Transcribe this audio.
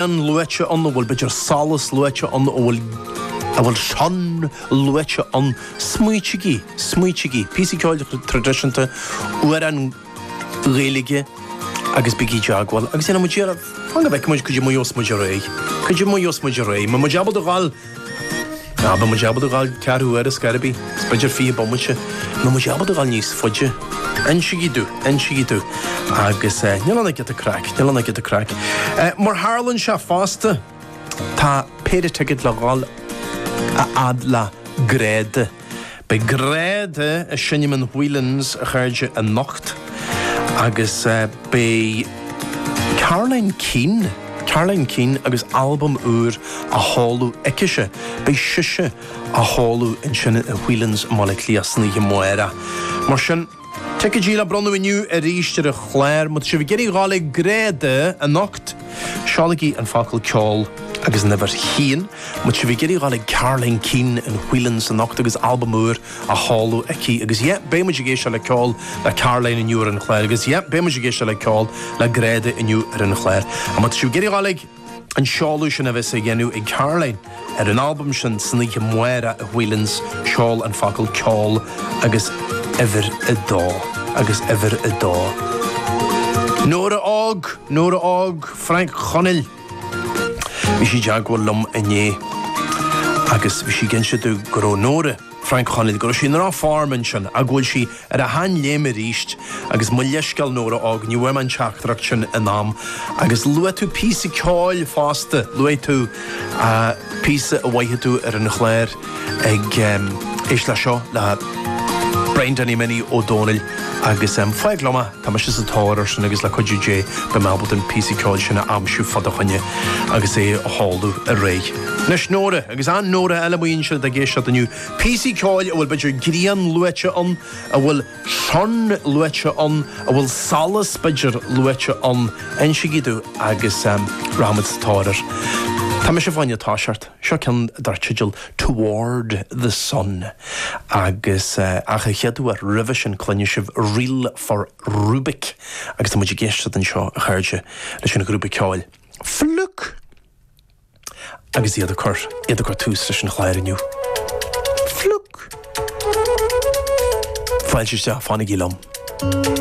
grian luaite ann a bhfuil b'fhéidir solas luaite ann a bhfuil a bhfuil shine luaite ann. Smaoitigí, smaoitigí. Píosa ceoil traidisiúnta, amhrán Gaeilge agus bígí i dteagmháil agus déanfaidh muid iarracht, fan go bhfeicfidh muid, go dtí muid os muid réidh. Go dtí muid os muid réidh. Muid ábalta a fháil. An mbeidh muid ábalta dul ceathrú uaire is gairid, is b'fhéidir fiche bomaite, nó muid ábalta dul níos faide. Insigí domh, insigí domh. Agus níl ann ach giota craic, níl ann ach giota craic. Mar a tharlaíonn sé fosta, tá péire ticéad le dhul a fhad le Gráda. Beidh Gráda ag seinm in Whelan's a chairde anocht agus beidh Caroline Keane, Caroline Keane agus albam úr á sheoladh aicise. Beidh sise á sheoladh ansin i Whelan's i mBaile Átha Cliath san oíche amárach. Mar sin. Ticéidí le bronnadh inniu arís ar an chlár. Má tá sibh ag iarraidh dhul ag Gráda anocht, seolaigí an focal 'ceol' agus an uimhir a haon. Má tá sibh ag iarraidh dhul ag Caroline Keane in Whelan's anocht agus albam úr á sheoladh aici. Agus yeah, beidh muid ag éisteacht le ceol le Caroline inniu ar an chlár. Agus yeah, beidh muid ag éisteacht le ceol le Gráda inniu ar an chlár. Má tá sibh ag iarraidh dhul ag. An seoladh sin a bheas á dhéanamh ag Caroline ar an albam sin san oíche amárach i Whelan's seol an focal ceol agus uimhir a dó agus uimhir a dó. Nóra Óg, Nóra Óg Frainc Chonaill bhí sí i dteagmháil liom inné agus bhí sí ag inse domh go raibh Nóra, Frainc Chonaill, go raibh sí i ndroch-form ansin ach go bhfuil sí ar a sheanléim arís agus mo leithscéal Nóra Óg, ní bhfuair mé an teachtaireacht sin in am. Agus luaigh tú píosa ceoil fosta, luaigh tú píosa a mhothaigh tú ar an chlár ag, éist leis seo, le Brian Danny Minnie Ó Dónaill agus fág liom é. Tá mise sa tóir ar sin agus le cuidiú Dé beidh mé ábalta an píosa ceoil sin a aimsiú fá do choinne agus é a sheoladh ar aghaidh. Anois Nóra, agus aon Nóra eile amuigh ansin atá ag éisteacht inniu, píosaí ceoil a bhfuil b'fhéidir grian luaite ann, a bhfuil shine luaite ann, a bhfuil solas b'fhéidir luaite ann, insigí domh agus rachaimid sa tóir air. Tá mise fá choinne toiseacht. Seo ceann dar teideal 'Toward the Sun' agus ach a chéaduair roimhe sin cluinfidh sibh 'Reel for Rubik' agus tá muid ag éisteacht anseo, a chairde, leis an ghrúpa ceoil Flook! Agus iad ag cur, iad ag cur tús leis an chlár inniu. Flook! Fáilte isteach, fanaigí liom.